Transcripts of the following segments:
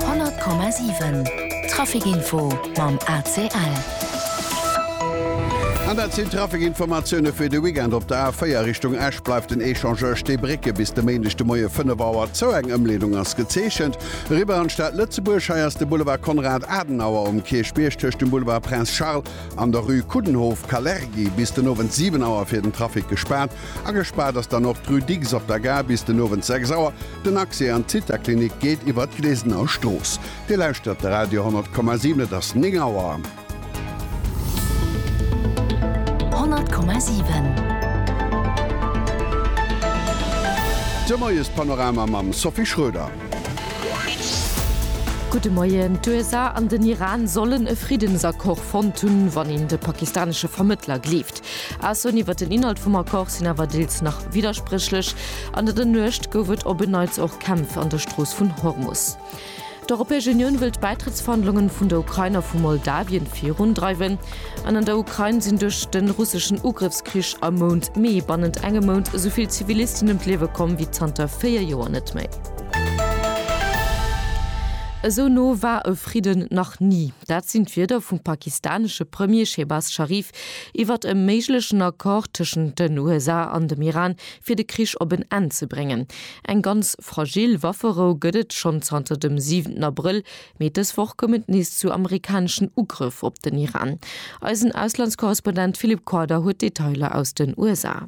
100,7 Trafic Info mam ACL. An dat sinn d'Trafic-Informatioune fir de Weekend. Op der A4 Richtung Esch bleift den Echangeur Stee Brécke bis de Méindeg de Moie 5 Auer zou. Eng Ëmleedung ass gezeechent. Eriwwer an d'Stad Lëtzebuerg. Hei ass de Boulevard Konrad Adenauer um Kierchbierg tëscht dem Boulevard Prince Charles an der Rue Coudenhove, Kalergi, bis den Owend 7 Auer fir den Trafic gespaart. A gespaart ass dann och d'Rue Dicks op der Gare bis den Owend 6 Auer. Den Accès an d'Zithaklinik geet iwwer d'Glesener Strooss. Dir lauschtert de Radio 10,7. Et ass 9 Auer. 10,7. De Moiespanorama mam Sophie Schröder. Gudde Moien. D'USA an den Iran sollen e Friddensaccord fonnt hunn, wann een de pakistanesche Vermëttler gleeft. Aussoen iwwert den Inhalt vum Accord sinn awer deels nach widderspréchlech. An der der Nuecht gouf et op en Neits och Kämpf an der Strooss vun Hormus. D'Europäesch Unioun wëll d'Bäitrëttsverhandlungen vun der Ukrain a vu Moldawien virundreiwen. An an der Ukrain sinn duerch de russeschen Ugrëffskrich am Mount Mee bannent engem Mount esou vill Zivilisten ëm d'Liewe komm wéi zanter 4 Joer net méi. Esou no war e Fridden nach ni. Dat sinn d'Wierder vum pakistanesche Premier Shehbaz Sharif iwwert e méiglechen Accord tëschent den USA an dem Iran, fir de Krich op en Enn ze bréngen. Eng ganz fragil Wafferou gëtt et schonn zanter dem siwenten Abrëll, mee dës Woch koum et nees zu amerikaneschen Ugrëff op den Iran. Eisen Auslandskorrespondent Philippe Corder huet d'Detailer aus den USA.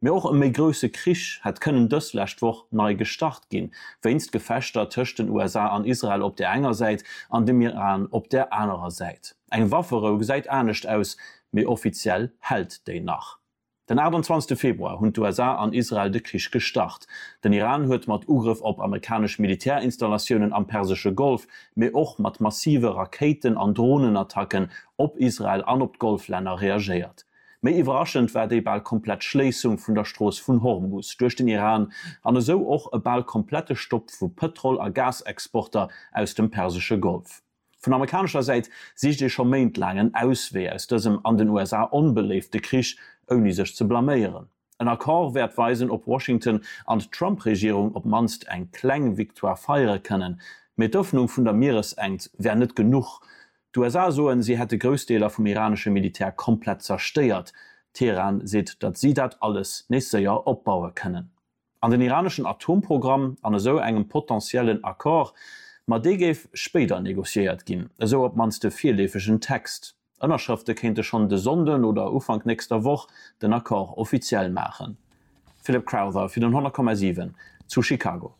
Mee och e méi grousse Krich hätt kënnen dës lescht Woch nei gestart ginn, wéinst Gefechter tëscht den USA an Israel op der enger Säit an dem Iran op der anerer Säit. Eng Wafferou gesäit anescht aus, mee offiziell hält déi nach. Den 28 Februar hunn d'USA an Israel de Krich gestart. Den Iran huet mat Ugrëff op amerikanesch Militärinstallatiounen am persesche Golf, mee och mat massive Rakéiten an Dronenattacken op Israel an op d'Golflänner reagéiert. Méi iwwerraschend war déi bal komplett Schléissung vun der Strooss vun Hormus duerch den Iran an esou och e bal komplette Stopp vu Pëtrol a Gasexporter aus dem persesche Golf. Vun amerikanescher Säit sicht ee scho méintlaang en Auswee aus dësem an den USA onbeléifte Krich, ouni sech ze blaméieren. En Accord wäert weisen, ob Washington an d'Trump-Regierung op d'mannst eng kleng Victoire feiere kënnen. Mee d'Ëffnung vun der Mieresengt wär net genuch. D'USA soen, si hätte grouss Deeler vum iranesche Militär komplett zerstéiert. Teheran seet, datt si dat alles nees séier opbaue kënnen. An den iraneschen Atomprogramm an esou engem potentiellen Accord, ma dee géif spéider negociéiert ginn, esou op d'mannst de virleefegen Text. Ënnerschrëfte kéinte schonn de Sonnden oder Ufank nächster Woch den Accord offiziell maachen. Philip Crowther fir den 100,7 zu Chicago.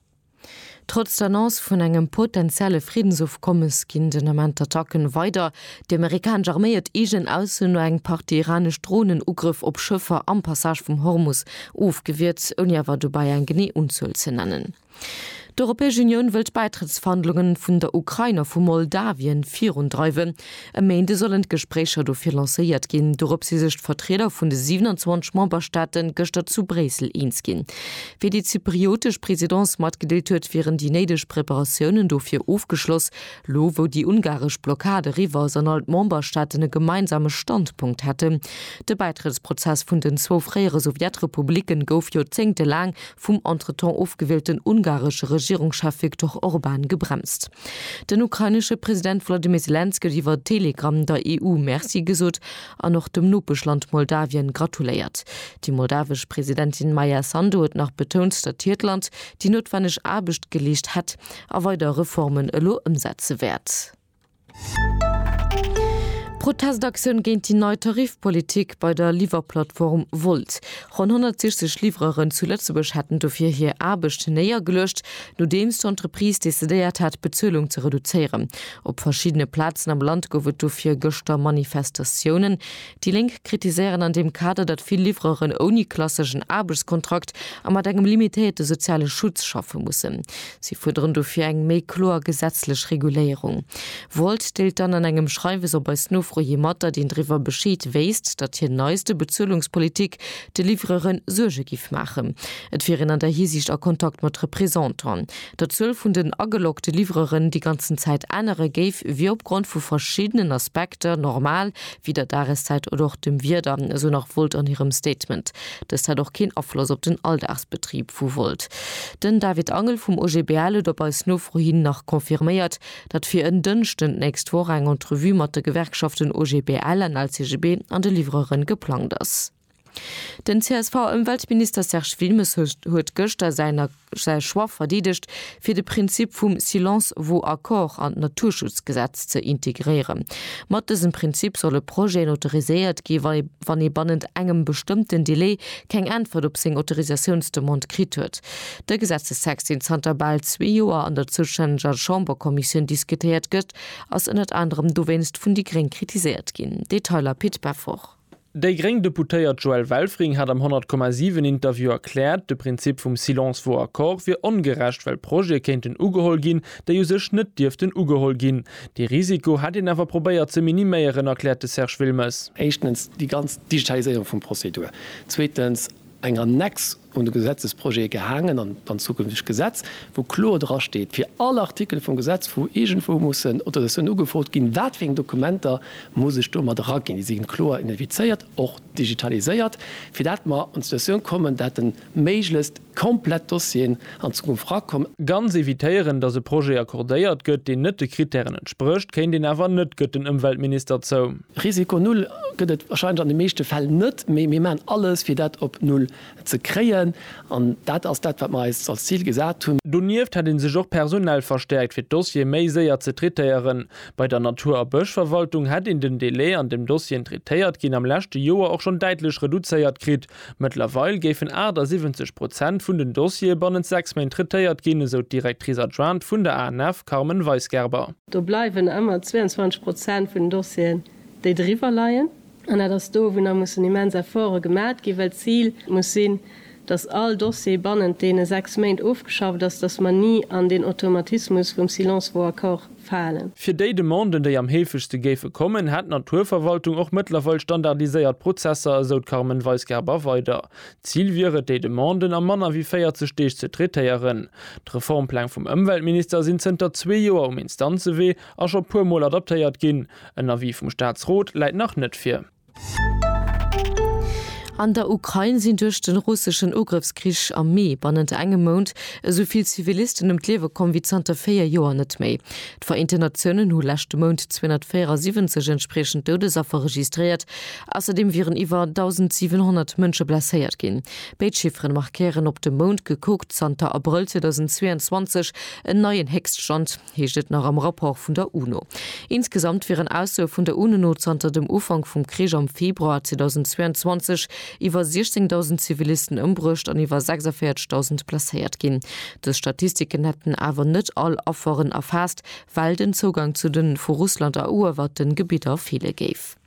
Trotz der Annonce vun engem potenzielle Friddensofkommes ginn den Ament d'Attacken weider. Déi amerikanesch Arméi huet eegen Ausso no eng Partie iranesch Dronenugrëff op Schëffer am Passage vum Hormus ofgewiert, ouni awer dobäi eng genee Unzuel ze nennen. D'Europäesch Unioun wëll d'Bäitrëttsverhandlunge vun der Ukrain a vu Moldawien virundreiwen. E Méinde sollen d'Gespréicher dofir lancéiert ginn. Dorop si sech d'Vertrieder vun de 27 Memberstaate gëschter zu Bréissel eens ginn. Wéi déi zypriotesch Presidence matgedeelt huet, wieren déi néideg Preparatiounen dofir ofgeschloss. Lo wou déi ungaresch Blockad eriwwer ass an all d'Memberstaaten e gemeinsame Standpunkt hätten. De Bäitrëttsprozess vun den zwou fréiere Sowjetrepublicke gouf joerzéngtelaang vum entretemps ofgewielten ungaresche Regierungschef Viktor Orban gebremst. Den ukrainesche President Volodymyr Zelensky huet iwwer Telegramm der EU Merci gesot an och dem Nopeschland Moldawien gratuléiert. Déi moldawesch Presidentin Maia Sandu huet nach betount, datt hiert Land déi noutwenneg Aarbecht geleescht hätt a weider Reformen elo ëmsetze wäert. Protestaktioun géint déi nei Tarifpolitik bei der Liwwerplattform Wolt. Ronn 160 Livreuren zu Lëtzebuerg hätten dofir hir Aarbecht néiergeluecht, nodeems d'Entreprise decidéiert hat, d'Bezuelung ze reduzéieren. Op verschiddene Plazen am Land gouf et dofir gëschter Manifestatiounen. Déi Lénk kritiséieren an deem Kader, datt vill Livreuren ouni klasseschen Aarbechtskontrakt a mat engem limitéierte soziale Schutz schaffe mussen. Si fuerderen dofir eng méi kloer gesetzlech Reguléierung. Wolt deelt dann an engem Schreiwes op eis Nofro hi mat, datt een driwwer Bescheed wéisst, datt hir neiste Bezuelungspolitik de Livreure Suerge géif maachen. Et wier een an där Hisiicht a Kontakt mat Représentanten. Datt d'Zuel vun den ageloggte Livreuren déi ganzen Zäit änere géif, wier opgrond vu verschiddenen Aspekter normal, wéi der Dageszäit oder och dem Wieder, esou nach Volt an hirem Statement. Dëst hätt och keen Afloss op den Alldagsbetrib vu Volt. Den David Angel vum OGBL huet op eis Nofro hin nach confirméiert, datt fir en Dënschden d'nächst Woch eng Entrevue mat de Gewerkschaften OGBL an LCGB an de Livreuren geplangt ass. Den CSV-Ëmweltminister Serge Wilmes huet gëschter säi Choix verdeedegt, fir de Prinzip vum Silence vaut accord an d'Naturschutzgesetz ze integréieren. Mat dësem Prinzip solle Projeten autoriséiert gi wann ee bannent engem bestëmmten Delai keng Äntwert op seng Autorisatiounsdemande kritt huet. De Gesetzestext, deen zanter bal zwee Joer an der zoustänneger Chamberkommissioun diskutéiert gëtt, ass ënnert anerem dowéinst vun déi gréng kritiséiert ginn. Detailer Pit Beffort. Déi gréng Deputéiert Joëlle Welfring hat am 100,7 Interview erkläert, de Prinzip vum Silence vaut accord wier ongerecht, well Projete kéinten ugeholl ginn, déi u sech net dierften ugeholl ginn. Dee Risiko hätt een awer probéiert ze miniméieren, erkläert de Serge Wilmes. Éischtens déi ganz Digitaliséierung vum Prozedur. Zweetens eng Annex. un de Gesetzesprojet gehaangen, an an zukünftegt Gesetz, wou kloer dra steet, fir all Artikel vum Gesetz, wou iergendwou mussen Autorisatiounen ugefrot ginn, wat fir eng Dokumenter muss ech do mat eraginn. Déi si ginn kloer identifizéiert, och digitaliséiert, fir dat mer an d'Situatioun kommen, dat de méiglechst komplett Dossieren an d'Zukunft erakommen. Ganz evitéieren, datt e Projet accordéiert gëtt, deen net de Krittären entsprécht, kéint een awer net, gëtt den Ëmweltminister zou. Risiko Null gëtt et wahrscheinlech an de meeschte Fäll net, mee mir maachen alles, fir dat op Null ze kréien. An dat ass dat, wat mir eis als Zil gesat hunn. Donieft hätt ee sech och personell verstäerkt, fir d'Dossiere méi séier ze traitéieren. Bei der Natur a Bëschverwaltung hätt een den Delai, an deem Dossieren traitéiert ginn, am leschte Joer och schonn däitlech reduzéiert kritt, Mëttlerweil géifen 78 Prozent vun den Dossiere bannent sechs Méint traitéiert ginn, esou d'Directrice adjointe vun der ANF Carmen Weisgerber. Do bleiwen ëmmer 22 Prozent vun den Dossieren, déi driwwer leien. An dat ass do, wou nach mussen immens Efforte gemat ginn, well d'Zil muss sinn, datt all Dossier bannent deene sechs Méint ofgeschafft ass, datt mer ni an deen Automatismus vum Silence vaut accord falen. Fir déi Demanden, déi am heefegste géife kommen, hätt d'Naturverwaltung och mëttlerweil standardiséiert Prozesser, esou d'Carmen Weisgerber weider. Zil wier et, déi Demanden a manner wéi 40 Deeg ze traitéieren. D'Reformpläng vum Ëmweltminister sinn zënter zwee Joer um Instanzewee a scho puermol adaptéiert ginn. En Avis vum Staatsrot läit nach net vir. An der Ukrain sinn duerch de russeschen Ugrëffskrich am Mee bannent engem Mount esou vill Zivilisten ëm d'Liewe komm wéi zanter véier Joer net méi. D'Vereenten Natiounen hu leschte Mount 274 entspriechend Doudesaffer registréiert. Ausserdeem wieren iwwer 1.700 Mënsche blesséiert ginn. Béid Chifferen markéieren op de Mount gekuckt zanter Abrëll 2022 en neien Héchststand. heescht et nach am Rapport vun der UNO. Insgesamt wieren Aussoe vun der UNO no zanter dem Ufank vum Krich am Februar 2022 iwwer 16.000 Zivilisten ëmbruecht an iwwer 46.000 blesséiert ginn. Dës Statistiken hätten awer net all Afferen erfaasst, well den Zougang zu de vu Russland eruewerten Gebidder feele géif.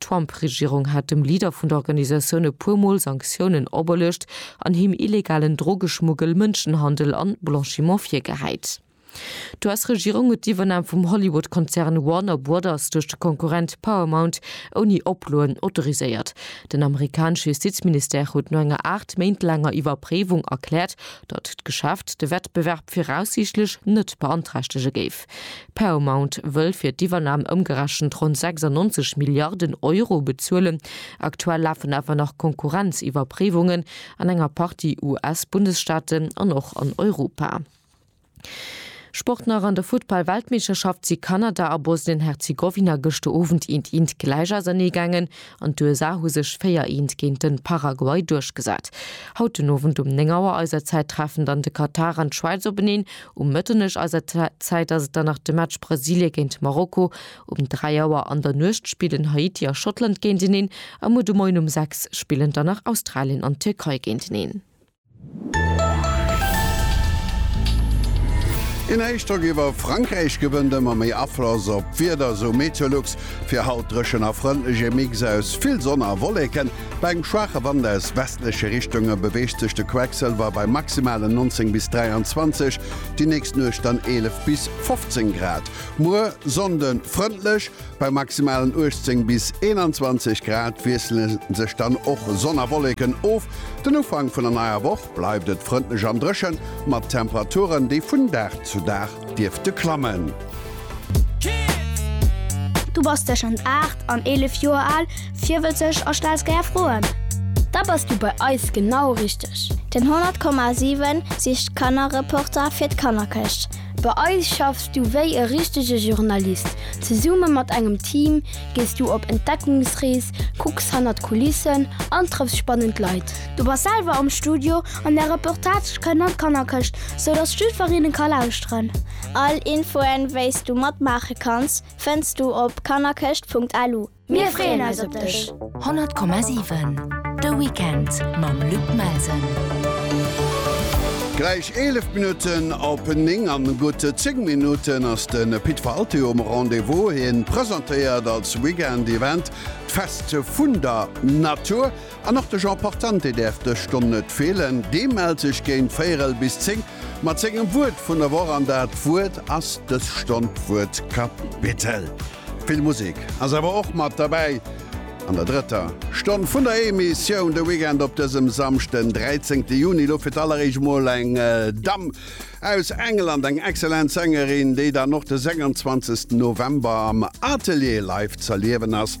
D'Trump-Regierung hat dem Leader vun der Organisatioun e puer Mol Sanktiounen operluecht an him illegalen Drogeschmuggel, Mënschenhandel an Blanchiment virgehäit. D'US-Regierung huet d'Iwwernahm vum Hollywood-Konzern Warner Brothers duerch de Konkurrent Paramount ouni Oploen autoriséiert. Den amerikanesche Justizministère huet no enger aacht Méint laanger Iwwerpréiwung erkläert, datt d'Geschäft de Wettbewerb viraussiichtlech net beanträchtege géif. Paramount wëll fir d'Iwwernam ëmgerechent ronn 96 Milliarden Euro bezuelen. Aktuell lafen awer nach Konkurrenziwwerpréiwungen an enger Partie US-Bundesstaaten an och an Europa. Sport nach, An der Futtball-Weltmeeschterschaft si Kanada a Bosnien-Herzegowina gëschter Owend eent eent gläich ausernee gaangen. An d'USA hu sech 4 eent géint de Paraguay duerchgesat. Haut den Owend um 9 Auer eiser Zäit treffen dann de Katar an d'Schwäiz openeen. Um Mëtternuecht eiser Zäit ass et dann nach de Match Brasilie géint Marokko um 3 Auer. An der Nuecht spillen Haiti a Schottland géinteneen a muer de Moien um 6 spillen dann nach Australien an d'Tierkei géinteneen. Een Héichdrock iwwer Frankräich gewënnt ëmmer méi Afloss op d'Wieder, esou Meteolux. Fir haut dréchen a frëndlech, ee Mix aus vill Sonn a Wolleken. Bei engem schwaache Wand aus westleche Richtunge beweegt sech de Quecksëlwer bei maximalen 19 bis 23, déi nächst Nuecht dann 11 bis 15 Grad. Muer, Sonnde, frëndlech. Bei maximalen 18 bis 21 Grad wiessele sech dann och Sonn a Wolleken of. Den Ufank vun der neier Woch bleift et frëndlech an dréchen, mat Temperaturen, déi vun Dag zu Dag dierfte klammen. Du bass tëschent 8 an 11 Joer al, virwëtzeg a stells gär Froen? Da bass du bei eis genau richteg! Den 100,7 sicht Kannerreporter fir d'Kannerkëscht. Bei eis schaffs du wéi e richtege Journalist. Zesumme mat engem Team gees du op Entdeckungsrees, kucks hannert d'Kulissen an trëffs spannend Leit. Du bass selwer am Studio an där Reportage kënnt an d'Kannerkëscht, sou dass jiddwereen e ka lauschteren. All Infoen, wéi s du matmaache kanns, fënns du op kannerkëscht.lu. Mir freeën eis op dech! 100,7 De Weekend mam Luc Melsen. Gläich 11 Minutten op 9 an gutt 10 Minutten ass de Pit for Altéo um Rendez-vous. Hien presentéiert als Weekend Event d'Fest vun der Natur. An och de Jean Portante däerf dës Stonn net feelen. Dee mellt sech géint véierel bis zéng mat sengem Wuert vun der Woch an dat Wuert ass dës Stonn d'Wuertkapitel. Vill Musek ass awer och mat derbäi an der drëtter Stonn vun der Emissioun de Weekend op dësem Samschd, den 13 Juni. Elo fir d'alleréischt emol eng Damm aus England, eng excellent Sängerin, déi dann och de 26 November am Atelier live z'erliewen ass.